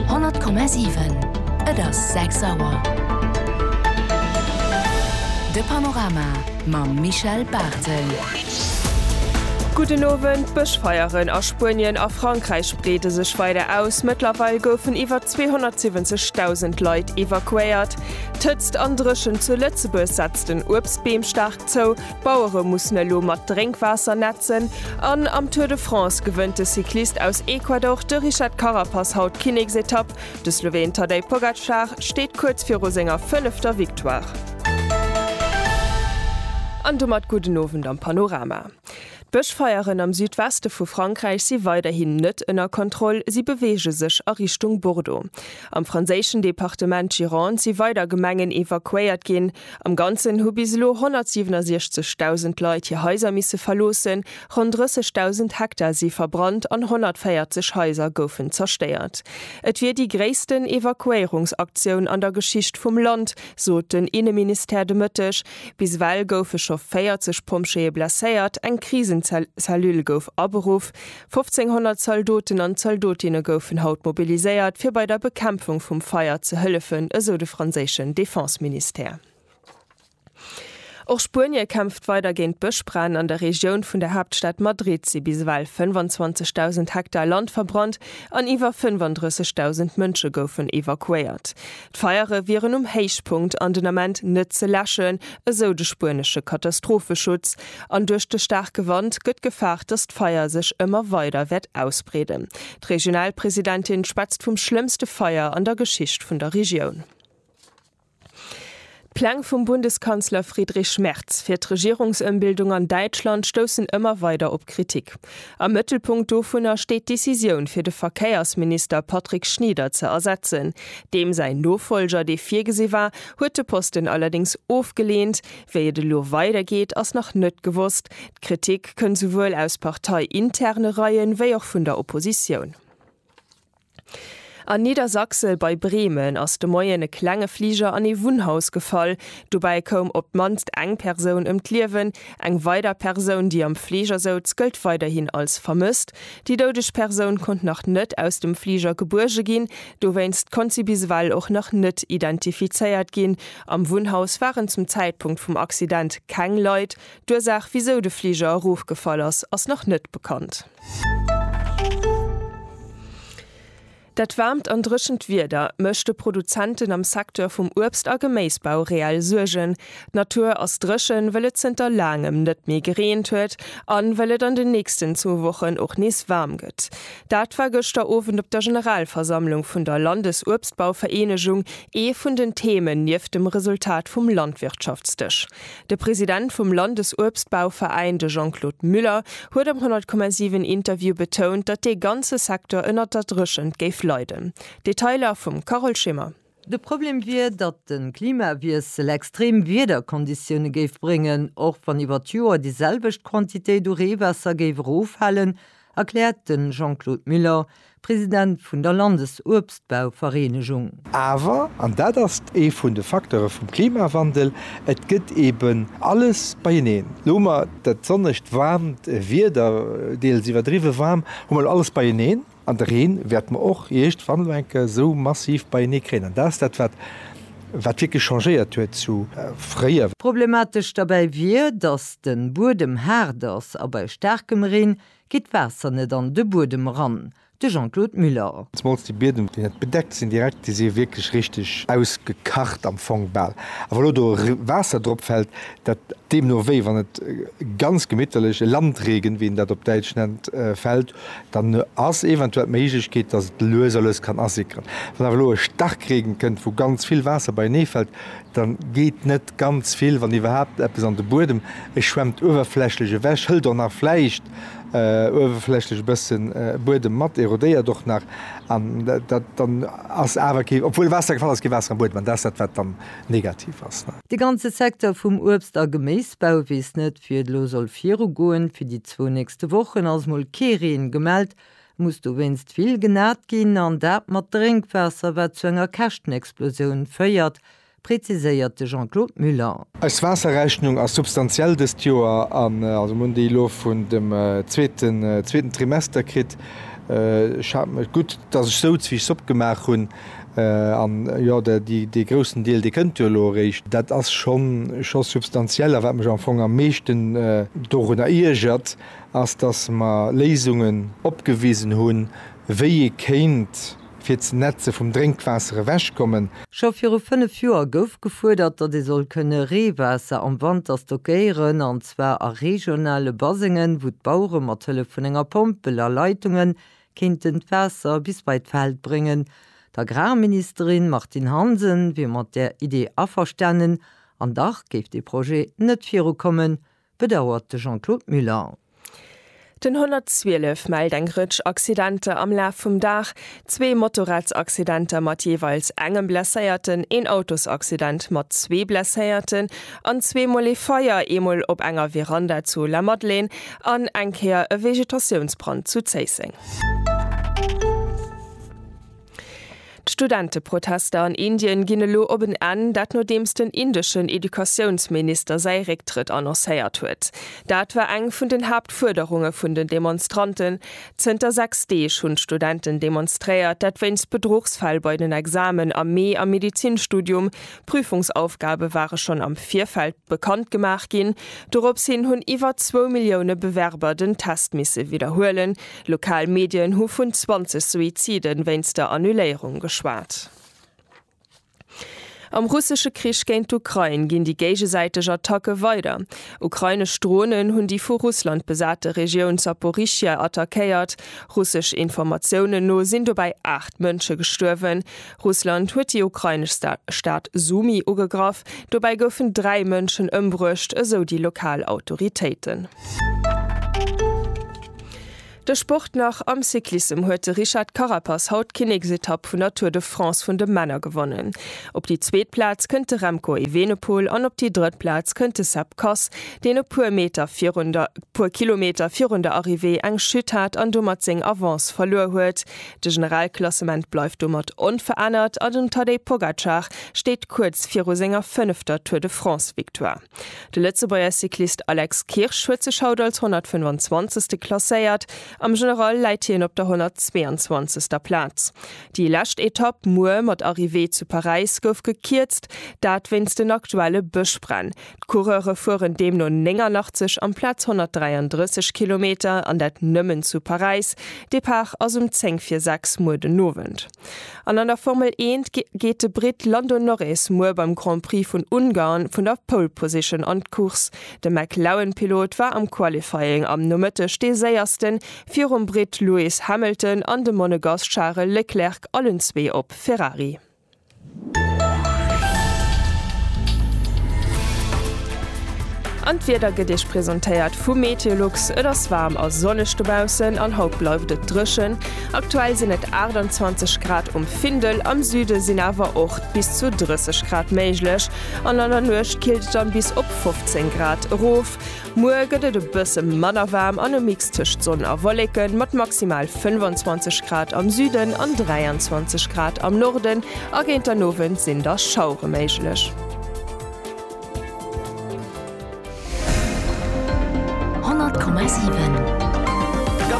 100,7. Et ass 6 Auer. De Panorama mam Michel Barthel. Gudden Owend. D'Bëschfeieren a Spuenien a Frankräich breede sech weider aus. Mëttlerweil goufen iwwer 270.000 Leit evakuéiert. D'Hëtzt an Dréchent zu Lëtzebuerg setzt den Uebstbeem staark zou. D'Bauere mussen elo mat Drénkwaasser netzen an am Tour de France gewënnt de Cyclist aus Ecuador, de Richard Carapaz haut d'Kinneksetapp. De Sloween Tadej Pogacar steet kuerz viru senger fënnefter Victoire. An domat gudden Owend am Panorama. D'Bëschfeieren am Südweste vu Frankräich si weiderhin net ënner Kontroll, si beweege sech a Richtung Bordeaux. Am franséischen Departement Gironde si weider Gemengen evakuéiert ginn. Am Ganzen hu bis elo 167.000 Leit hir Haiser misse verloossen, ronn 30.000 Hektar si verbrannt an 140 Haiser goufen zerstéiert. Et wier déi gréissten Evakuéierungsaktioun an der Geschicht vum Land, sot den Inneministère de Mëtteg. Bis ewell goufe scho 40 Pompjeeë blesséiert, eng Krisenzellule gouf aberuff. 1500 Zaldoten an Zaldotinne goufen haut mobiliséiert, fir bei der Bekämpfung vum Feier ze hëllefen, esou de franséischen Defenseministère. Och Spuenie kämpft weider géint d'Bëschbränn. An der Regioun vun der Haaptstad Madrid si bis ewell 25.000 Hektar Land verbrannt an iwwer 35.000 Mënsche goufen evakuéiert. D'Feiere wieren um Héichpunkt an den Ament net ze läschen, esou de spuenesche Katastropheschutz. An duerch de staarke Wand gëtt gefaart, datt d'Feier sech ëmmer weider wäert ausbreeden. D'Regionalpresidentin schwätzt vum schlëmmste Feier an der Geschicht vun der Regioun. D'Pläng vum Bundeskanzler Friedrich Merz fir d'Regierungsëmbildung an Däitschland stoussen ëmmer weider op Kritik. Am Mëttelpunkt dovunner steet d'Decisioun fir de Verkéiersminister Patrick Schnieder ze ersetzen. Deem säin Nofolger, dee virgesi war, huet de Posten allerdéngs ofgeleent, Wéi et elo weider geet, ass nach net gewosst. D'Kritik kënn souwuel aus parteiinterne Reien, wéi och vun der Oppositioun. An Niedersachsel bei Bremen ass de Moien e klenge Fliger an ee Wunnhaus gefall. Dobäi koum op d'mannst eng Persoun ëm d'Liewen. Eng weider Persoun, déi am Fliger souz, gëllt weiderhin als vermësst. Déi doudeg Persoun konnt nach net aus dem Fliger gebuerge ginn. Dowéinst konnt si bis ewell och nach net identifizéiert ginn. Am Wunnhaus waren zum Zäitpunkt vum Accident keng Leit. D'Ursaach, wisou de Fliger erofgefall ass, ass nach net bekannt. Dat waarmt an dréchent Wieder mécht de Produzenten am Secteur vum Uebst a Geméisbau reell Suergen. D'Natur ass dréchen, well et zënter laangem net méi gereent huet an well et an den nächsten zwou Wochen och nees waarm gëtt. Dat war gëschter Owend op der Generalversammlung vun der Landesuebstbauvereenegung ee vun den Themen, nieft dem Resultat vum Landwirtschaftsdësch. De President vum Landesuebstbauveräin, de Jean-Claude Muller, huet am 10,7 Interview betount, datt dee ganze Secteur ënnert der Dréchent géif leiden. Detailer vum Carole Schimmer. De Problem wier, datt de Klimawiessel extrem Wiederkonditioune géif bréngen, och wann iwwer d'Joer déi selwecht Quantitéit u Reewaasser géif eroffalen, erkläert de Jean-Claude Muller, President vun der Landesuebstbauvereenegung. Awer, an dat ass ee vun de Facteure vum Klimawandel, et gëtt eben alles beieneen. Elo hu mer dat sonnegt, waarmt Wieder, deels iwwerdriwwe waarm, hu mer elo alles beieneen. An de Reen wäerte mer och eescht wann elo eng Kéier esou massiv beienee kréien. An dat ass dat, wat wierklech changéiert huet zu fréier. Problematesch derbäi wier, datt de Buedem haart ass a bei staarkem Reen geet d'Waasser net an de Buedem eran. De Jean-Claude Muller. Zemools déi Biedem, déi net bedeckt sinn direkt, déi si wierklech richteg ausgekacht am Fong bal. A wa elo do Waasser drop fält, dat deemno wéi wann et ganz gemitterlech e Landregen, wéi een dat op Däitsch nennt, fält, Dann ass eventuell d'Méiglechkeet, dass et lues a lues kann asickeren. Wann awer elo e Starkregen kënnt, wou ganz vill Waasser beienee fält, da geet net ganz vill, wann iwwerhaapt eppes, an de Buedem. E schwemmt uewerflächlech ewech, hëlt och nach vläicht uewerflächlech e bësse Buedem mat, erodéiert och nach. An dat dann ass awer kee, obwuel Waasser gefall ass, kee Waasser am Buedem. An dat ass dat, wat dann negativ ass. De ganze Secteur vum Uebst a Geméisbau weess net, wéi et elo soll virugoen. Fir déi zwou nächste Wochen ass mol kee Reen gemellt. Et muss dowéinst vill genat ginn, an dat mat Drénkwaasser, wat zu enger Käschtenexplosioun féiert, präziséiert de Jean-Claude Muller. Eis Waasserrechnung ass substantiell dëst Joer, an also mir hunn déi elo vun dem zweeten Trimester kritt. Ech hat gutt, datt ech souz, wéi ech Zopp gemaach hunn. An jo, dee groussen Deel, dee kënnt jo elo eréischt. Dat ass scho substantiell. A wat mech am Fong am meeschten dorunner iergert, ass, datt mer Léisungen opgewisen hunn, wéi ee kéint fir d'Netze vum Drénkwaasser ewechkommen. Scho viru fënnef Joer gouf gefuerdert, datt ee soll kënne Reewaasser am Wanter stockéieren, an zwar a regionale Basengen, wou d'Bauere mat Hëllef vun enger Pompel a Leitungen kéinten d'Waasser bis bei d'Feld bréngen. D'Agrarministerin Martine Hansen wier mat där Idee averstanen, an dach géif dee Projet net virukommen, bedauert de Jean-Claude Muller. Den 112 mellt eng Rëtsch Accidenter am Laf vum Dag, zwee Motorradsaccidenter mat jeeweils engem Blesséierten, een Autosaccident mat zwee Blesséierten An zwee Mol ee Feier, ee Mol op enger Veranda zu La Madelaine an eng Kéier e Vegetatiounsbrand zu Zéisseng. D'Studenteprotester an Indien ginn elo op en Enn, dat nodeems den indeschen Educatiounsminister säi Récktrëtt annoncéiert huet. Dat war eng vun den Haaptfuerderunge vun den Demonstranten. Zënter 6 Deeg hunn d'Studenten demonstréiert, dat wéinst Bedruchsfäll bei den Examen am Mee am Medizinstudium, D'Prüfungsaufgabe ware schonn am Virfeld bekannt gemaach ginn. Dorops hin hunn iwwer zwou Millioune Bewerber den Test misse widderhuelen. Lokal Medien hu vun 20 Suizide wéinst der Annuléierung geschwat. Am russesche Krich géint d'Ukrain ginn déi géigesäiteg Attacke weider. Ukrainesch Dronen hunn déi vu Russland besate Regioun Zaporizhia attackéiert. Russesch Informatiounen no sinn dobäi 8 Mënsche gestuerwen. Russland huet déi ukrainesch Stad Sumy ugegraff. Dobäi goufen dräi Mënschen ëmbruecht, esou déi lokal Autoritéiten. De Sport nach, Am Cyclissem huet de Richard Carapaz haut d'Kinneksetapp vun der Tour de France vun de Männer gewonnen. Op déi zweet Plaz kënnt de Remco Evenepoel an op déi drëtt Plaz kënnt de Sepp Kuss, deen e puer Meter virun der puer Kilometer virun der Arrivée eng Chute hat an domat seng Avance verluer huet. De Generalklassement bleift domat onverännert an den Tadej Pogacar steet kuerz viru senger fënnefter Tour de France-Victoire. De Lëtzebuerger Cyclist Alex Kirsch huet sech haut als 125. klasséiert, am General läit hien op der 122. Plaz. Déi lescht Etapp muer mat Arrivée zu Paräis gouf gekierzt, dat wéinst den aktuelle Bëschbränn. D'Coureure fueren deemno 89 amplaz 133 Kilometer, an dat nëmmen zu Paräis. Depart ass um 10 vir 6 muer den Owend. An an der Formel Eent geet de Britt Lando Norris muer beim Grand Prix vun Ungarn vun der Pole Position an d'Course. De McLaren-Pilot war am Qualifying am Nomëtteg dee Séiersten, virum Britt Lewis Hamilton an dem Monegass Charel Leclerc, allen zwee op Ferrari. An d'Wieder gëtt Iech presentéiert vu Meteolux. Et ass waarm a sonneg dobaussen an haut bleift et dréchen. Aktuell sinn et 28 Grad um Findel, am Süde sinn awer och bis zu 30 Grad méiglech an an der Nuecht killt et dann bis op 15 Grad erof. Muer gëtt et e bësse manner waarm an e Mix tëscht Sonn a Wolleken, mat maximal 25 Grad am Süden an 23 Grad am Norden, a géint den Owend sinn da Schauere méiglech.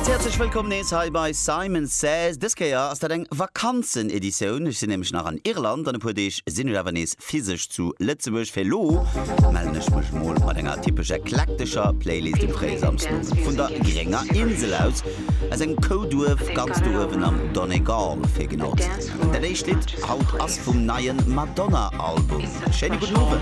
Ganz häerzlech wëllkomm nees hei bei Simon Says. Dës Kéier ass dat eng Vakanzeneditioun, ech sinn nämlech nach an Irland, an e puer Deeg sinn ech awer nees Fest physesch zu Lëtzebuerg. Fir elo mellen ech mech mol mat enger typesch eklektescher Playlist um fréie Samsmoien vun der grénger Insel aus, aus engem Kouduerf ganz do uewen am Donegal fir genau ze sinn. An dat éischt Lidd haut ass vum neie Madonna Album. Schéine gudden Owend.